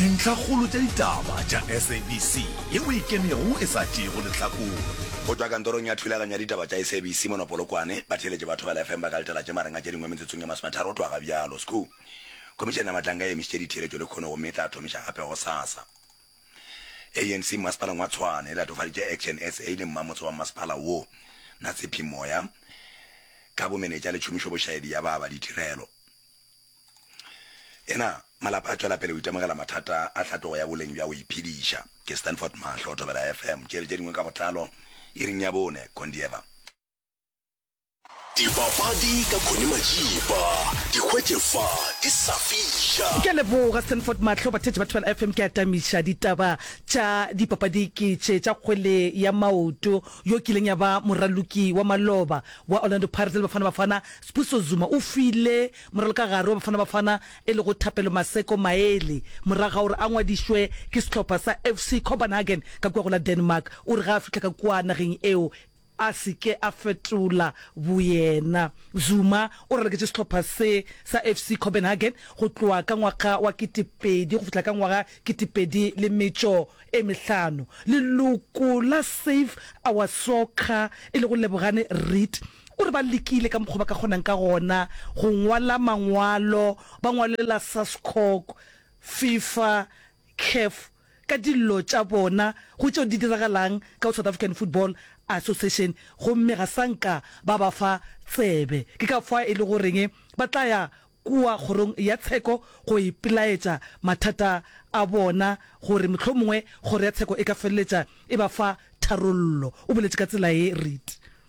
Dintlhakgolo tša ditaba tša SABC ye o e kenego e sa tšeego lehlakore. Go tšwa kantorong ya thulaganyo ya ditaba tša SABC mono Polokwane, batheeletše ba Thobela FM ba ka letela tše mareng a tše dingwe metsotsong ye masometharo go tloga ga bjalo. Sku. Khomišene ya Matlanga e emišitše ditheeletšo lekhono gomme e tla thomiša gape gosasa. ANC mmasepaleng wa Tshwane e latofaditše Action sa le mmamotse wa mmasepala wo, Natsephi Moya, ka bomenetša le tšhomišobošaedi ya ba ba ditirelo. Ena, Malapa a tšwela pele go itemogela mathata a tlhatlogo ya boleng bja go iphediša, ke Stanford Mahlo, Thobela FM, Tšeele tše dingwe ka botlalo iring ya bone, Kondieva. Dipapadi ka Connie Majiba, di hwetše fa di sa fiša. Ke a leboga Stanford Mahlo. Bathetši ba Thobela FM, ke atamiša ditaba tša dipapadi ke tše tša kgwele ya maoto yo kileng ya ba moraloki wa maloba wa Orlando Pirates le Bafana Bafana Sbuso Zuma o file moralokagare wa Bafana Bafana e lego Thapelo Maseko maele morago ga gore a ngwadišwe ke sehlopha sa FC Copenhagen ka kua go la Denmark. O re ge a fihla ka kua nageng eo, a se ke a fetola boyena. Zuma o raloketše sehlopha se sa FC Copenhagen go tloga ka ngwaga wa ketepedi go fihla ka ngwaga ketepedi le metšo e mehlano. Leloko la Save Our Soccer e lego Lebogane Read O re ba lekile ka mokgwa ba ka kgonang ka gona go ngwala mangwalo, ba ngwalela SASCOC, Fifa, Caf ka dillo tša bona go tšeo di diragalang ka go South African Football Association gomme ga sa nka ba ba fa tsebe. Ke ka fa e le goreng ba tla ya kua kgorong ya tsheko go ipelaetša mathata a bona gore mohlomongwe kgoro ya tsheko e ka feleletša e ba fa tharollo, o boletše ka tsela ye. Read.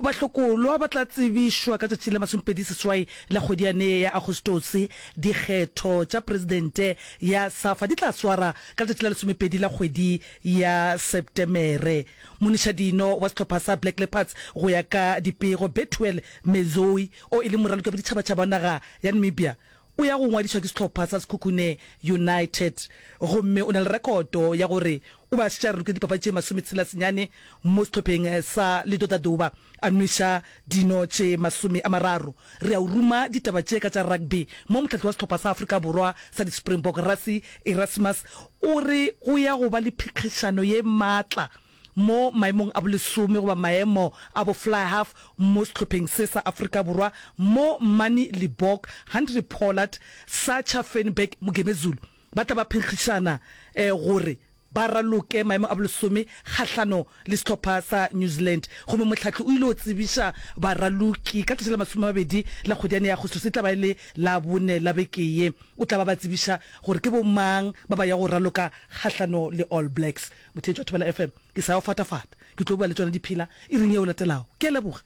Bahlokolwa ba tla tsebišwa ka tšatši la masomepedi seswai la kgwedi yane ya Agostose. Dikgetho tša presidente ya Safa di tla swara ka letšatši la lesomepedi la kgwedi ya Sepetemere. Monišadino wa sehlopha sa Black Leopards go ya ka dipego, Bethuel Mezoi, o e leng moraloki wa boditšhabatšhaba wa naga ya Namibia, O ya go ngwadišwa ke sehlopha sa Sekhukhune United gomme o na le rekoto ya gore o ba šetša rurukile dipapadi tše masometshela senyane mo sehlopheng sa Ledotadouba, a nweša dino tše masome a mararo. Re a o ruma ditaba tše ka tša rugby mo mohlahli wa sehlopha sa Afrika Borwa sa di-Springbok, Rassie Erasmus, o re go ya go ba le phikhixano ye matla Mo maemong a bolesome goba maemo a bo fly half mo sehlopheng se sa Afrika Borwa mo Mani Libbok, Henry Pollard, Sacha Feinberg, Mugemezulu ba tla ba phenkgišana gore ba raloke maemo a bolesome kgahlano le sehlopha sa New Zealand. Gomme mohlahli o ile o tsebiša baraloki ka tšatši la masome a mabedi la kgwedi yane ya Agostose, e tla ba e le Labone la beke ye, o tla ba ba tsebiša gore ke bo mang ba ba yago raloka kgahlano le All Blacks. Mothetši wa Thobela FM, ke sa o fatafata. Ke tlo bua le tšona diphela iring yeo latelago. Ke a leboga.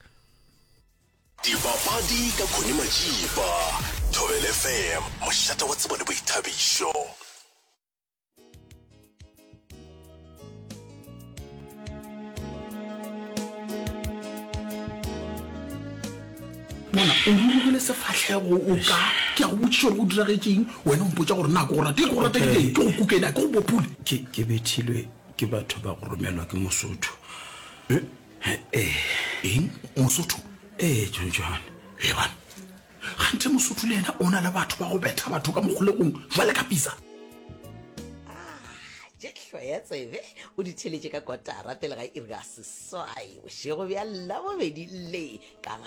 Dipapadi ka Connie Matšipa, Thobela FM, mošate wa tsebo le boithabišo. bona o rurugile sefatlhego o ka ke a go botšiša gore go diragetseng wena o mpotsa gore na ke go rate ke go rategileng ke go kukena ke go bopule ke bethilwe ke batho ba go romelwa ke mosotho eh, eh, eh. eng mosotho ee jonjone e bana ganthe mosotho le ena o na le batho ba go betha batho ka mokgolegong jwale ka pisa tšehlo ya tsebe o di theletše ka kotara pele ga iri ga seswai bošego bja labobedi le ka